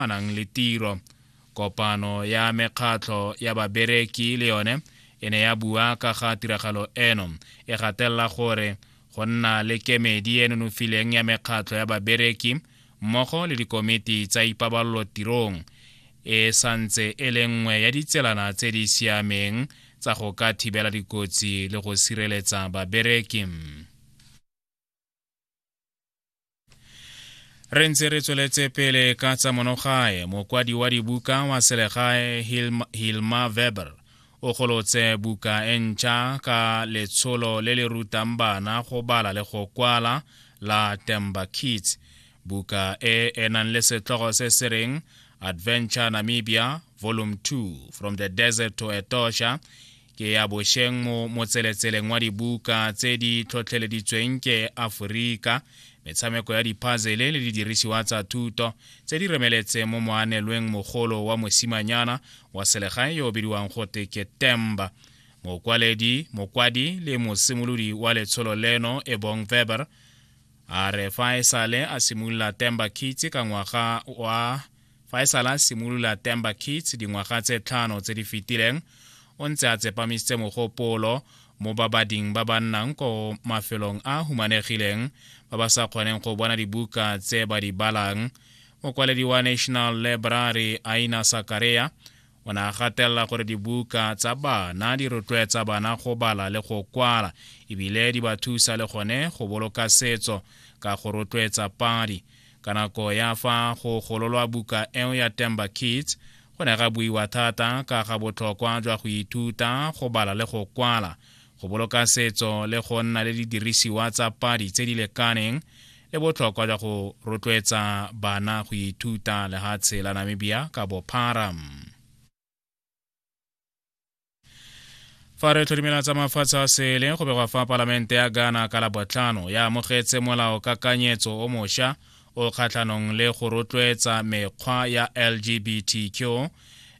a nang le tiro kopano ya mekgatlho ya babereki le yone e ne ya bua ka ga tiragalo eno e gatelela gore go nna le kemedi e nonofileng ya mekgatlho ya babereki mmogo le dikomiti tsa ipabalelo tirong e santse e le nngwe ya ditselana tse di siameng tsa go ka thibela dikotsi le go sireletsa babereki re ntse re tsweletse pele ka tsa monogae mokwadi wa dibuka wa selegae hilma weber o golotse buka e ntšha ka letsholo le le rutang bana go bala le go kwala la temba kids buka e e nang le setlogo se se reng adventure namibia volume 2 from the desert to etosha ke ya bošeng mo motseletseleng wa dibuka tse di tlhotlheleditsweng ke aforika metshameko ya diphazele le didirisiwa tsa thuto tse di remeletseng mo moanelweng mogolo wa mosimanyana wa selegae yo o bidiwang gote ke temba mokwaledi mokwadi le mosimolodi wa letsholo leno e bong weber a re fa e sale a simolola temba kitse ka ngwaga wa fa e sala simolola Temba Kids dingwaga tse tlhano tse di fetileng o ntse a tsepamisitse mogopolo mo babading ba ba nnang ko mafelong a humanegileng ba ba sa kgoneng go bona dibuka tse ba di balang mokwaledi wa national library aina sakareya O ne a gatelela gore dibuka tsa bana di rotloetsa bana go bala le go kwala ebile di ba thusa le gone go boloka setso ka go rotloetsa padi. Ka nako ya fa go gololwa buka eo ya Temba Kids, go ne ga buiwa thata ka ga botlhokwa jwa go ithuta go bala le go kwala. go boloka setso le go nna le didirisiwa tsa padi tse di lekaneng le botlhokwa jwa go rotloetsa bana go ithuta lehatshe la namibia ka bophara fa re tlhodimela tsa mafatshe a sele go begwa fa palamente ya ghana ka labotlhano ya amogetse molao kakanyetso o mošwa o kgatlhanong le go rotloetsa mekgwa ya lgbtq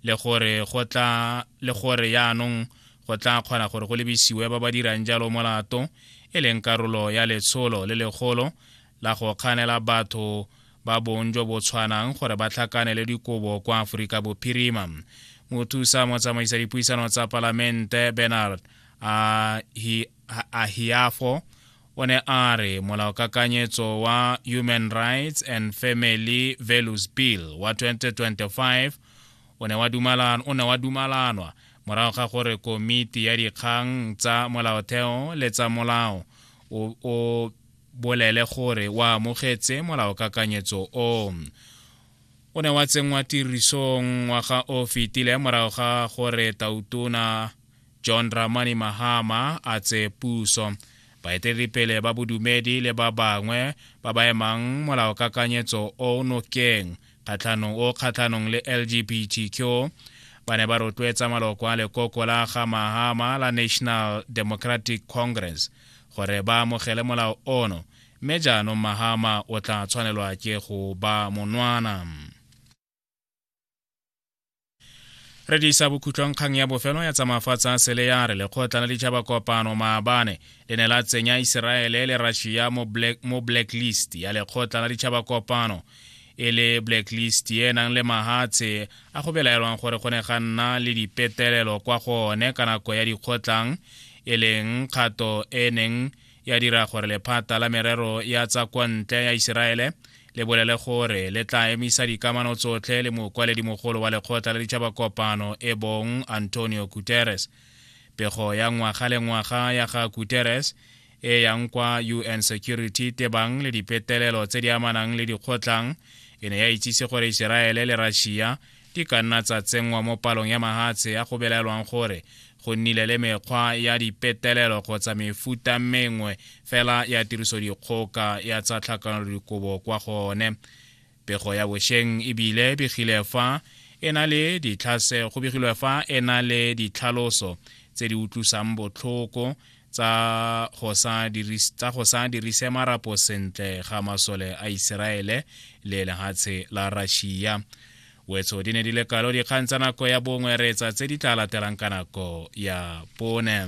le gore yaanong go tla kgona gore go lebisiwe ba ba dirang jalo molato e leng karolo ya letsholo le legolo la go kganela batho ba bong jo bo tshwanang gore ba tlhakanele dikobo kwa aforika bophirima mothusa motsamaisa dipuisano tsa palamente bernard ahiafo o ne a re molaokakanyetso wa human rights and family values bill wa 2025 o ne wa dumalan, o ne wa dumalanwa morago ga gore komiti ya dikgang tsa molaotheo le tsa molao o, o bolele gore wa amogetse molaokakanyetso o o ne wa tsenngwa tirisong ngwaga o fetile morago ga gore tautona john ramani mahama a tse puso baeteledipele ba bodumedi le ba bangwe ba ba emang molaokakanyetso o nokeng kgatlhanong o kgatlhanong le lgbtq ba ne ba rotloetsa maloko a lekoko la ga mahama la national democratic congress gore ba amogele molao ono mme jaanong mahama o tla tshwanelwa ke go ba monwana re disa bokhutlong kgang ya bofelo ya tsamafatsa a sele ya re lekgotla la ditšhaba kopano maabane le ne la tsenya iseraele le russia mo, black, mo blacklist ya lekgotla la ditšhaba kopano e le blacklist e nang le mahatshe a go belaelwang gore go ne ga nna le dipetelelo kwa go one ka nako ya dikgotlang e leng kgato e neng ya dira gore lephata la merero ya tsa kwa ntle ya iseraele le bolele gore le tla emisa dikamano tsotlhe le mokwaledimogolo wa lekgotla la ditšhabakopano e bong antonio guterres pego ya ngwaga le ngwaga ya ga guterres e yang kwa un security tebang le dipetelelo tse di amanang le dikgotlang e ne ya itsise gore iseraele le russia di ka nna tsa tsenngwa mo palong ya mahatshe ya go belaelwang gore go nnile le mekgwa ya dipetelelo kgotsa mefuta mengwe fela ya tirisodikgoka ya tsa tlhakanelodikobo kwa gone pego ya bosheng ebile begile fa e na le ditlhase go begilwe fa e na le ditlhaloso tse di utlwisang botlhoko tsa go sa dirise marapo sentle ga masole a iseraele le lehatshe la russia wetso di ne di le kalo dikgang tsa nako ya bongwe reetsa tse di tla latelang ka nako ya pone